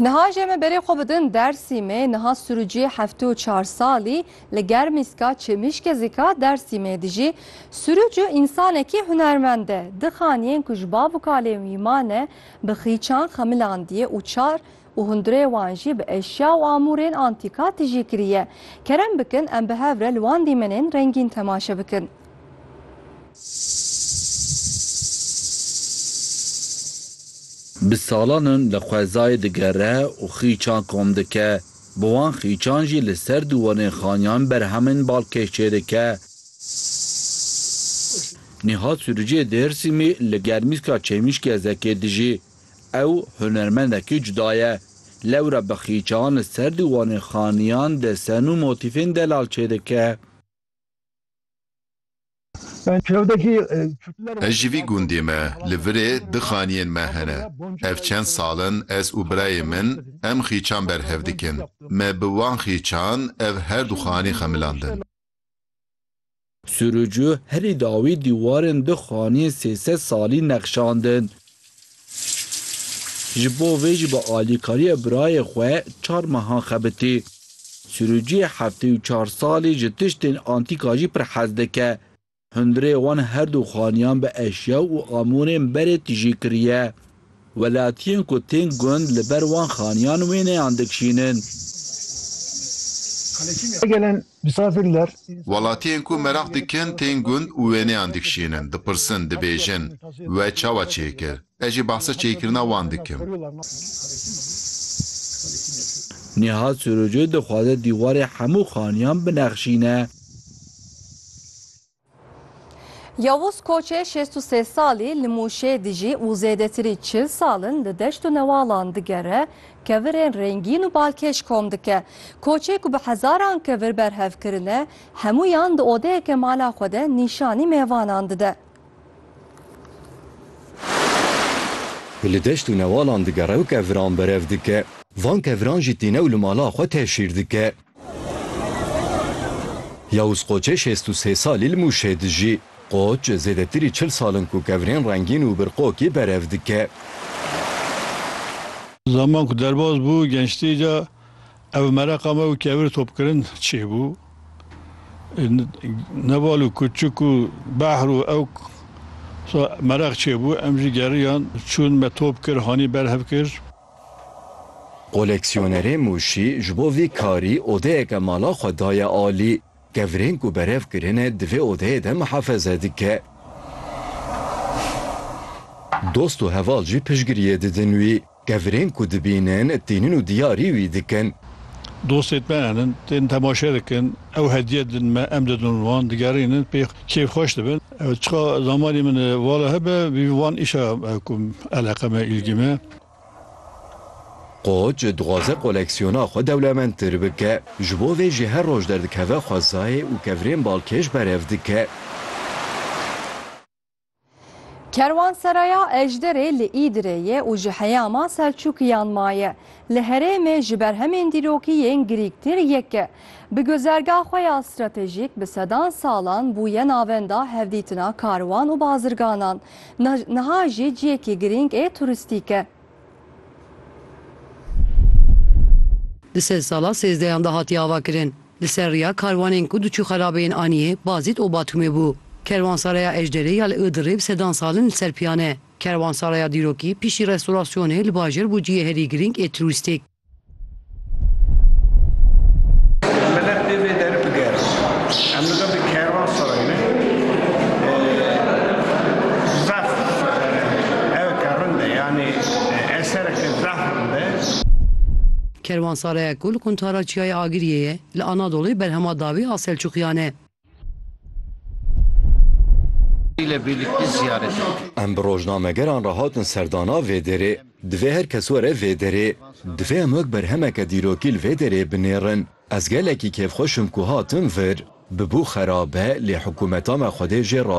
Niha jê me berê xwe bidin Dersîmê niha sirûciyê heftê û çar salî li Germîska Çêmîşkê zika Dersîmê dijî. Sirûc û însanekî hunermend e. Di xaniyên ku ji bav û kalên wî mane bi xîçan xemilandiye û çar û hundirê wan jî bi eşya û amûrên antîka tijî kiriye. Kerem bikin em bi hev re li wan dîmenên rengîn temaşe bikin. Bi salan in li xwezayê digere û xîçan kom dike. Bi wan xîçan jî li ser dûwanên xaniyan berhemên balkêş çêdike. Nîhat Sûriciyê Dêrsimî li Germîska Çêmîşkê Zekê dijî. Ew hunermendekî cuda ye. Lewre bi xîçan li ser dûwanên xaniyan desen û motîfên delal çêdike. Ez ji vî gundê me, li virê du xaniyên me hene. Ev çend sal in ez û birayê min em xîçan berhev dikin. Me bi wan xîçan ev her du xanî xemilandin. Sûrûcu herî dawî dîwarên du xaniyên sê sed salî nexşandin. Ji bo vê jî bi alîkariya birayê xwe çar mehan xebitî. Sirûciyê heftê û çar salî ji tiştên antîka jî pir hez dike. Hundirê wan herdu xaniyan bi eşya û amûrên berê tijî kiriye. Welatiyên ku tên gund li ber wan xaniyan wêneyan dikşînin. Gelen Welatiyên ku meraq dikin tên gund û wêneyan dikişînin, dipirsin, dibêjin, We çawa çê kir? Ez jî behsa çêkirina wan dikim. Nîhat Sirûcî dixwaze dîwarê hemû xaniyan binexşîne. Yavuz Koçê şêst û sê salî li Mûşê dijî û zêdetirî çil sal in li deşt û newalan digere, kevirên rengîn û balkêş kom dike. Koçê ku bi hezaran kevir berhev kirine, hemûyan di odeyeke mala xwe de nîşanî mêvanan dide. Ku li deşt û newalan digere û keviran berev dike. Van keviran jî tîne û li mala xwe tev şîr dike. Yawûz Qoçê şêst û sê salî li Mûşê dijî. Qoç zêdetirî çil sal in ku kevirên rengîn û birqokî berev dike. Zaman ku derbas bû gençtî ca ev mereqa me û kevir topkirin çêbû. Ne bal û kuçik û behr û ew mereq çêbû em jî geriyan çûn me top kir hanî berhev kir. Koleksiyonerê Mûşî ji bo vî karî odeyeke mala xwe daye alî. Kevirên ku berev kirine di vê odeyê de mihafeze dike. Dost û heval jî piştgiriyê didin wî. Kevirên ku dibînin tînin û diyarî wî dikin. Dostên me henin, tên temaşe dikin, ew hediye didin me, em didin wan, digerînin pê kêfxweş dibin. Çiqa zamanê min vala hebe, vî van îşa ku eleqe me, îlgî me. Koç dixwaze koleksiyona xwe dewlemendtir bike. Ji bo vê jî her roj derdikeve xwezayê û kevirên balkêş berev dike. Kerwanseraya Ejderê li Îdirê ye û ji heyama Selçûkiyan maye. Li herêmê ji berhemên dîrokî yên girîgtir yek e. Bi guzerga xwe ya stratejîk bi sedan salan bûye navenda hevdîtina karwan û bazirganan. Niha jî ciyekî girîng ê turistîk e. Di sed sala sêzdeyan de hatiye avakirin. Li ser riya karwanên ku diçû xerabeyên Aniyê, Bazît û Batûmê bû. Kerwansaraya Ejderê ya li Iğdırê bi sedan sal in li ser piyan e. Kerwansaraya dîrokî pişî restorasyonê li bajêr bû ciyê herî girîng ê turistîk. Kerwansareya ku li quntara Çiyayê Agiriyê ye, li Anadolê berhema dawî a Selçûkiyan e. Em bi rojnamegeran re hatin serdana vê derê. Divê her kes were vê derê. Divê em wek berhemeke dîrokî li vê derê binêrin. Ez gelekî kêfxweş im ku hatim vir. Bibû xerab e lê hikûmeta me xwedê jê razî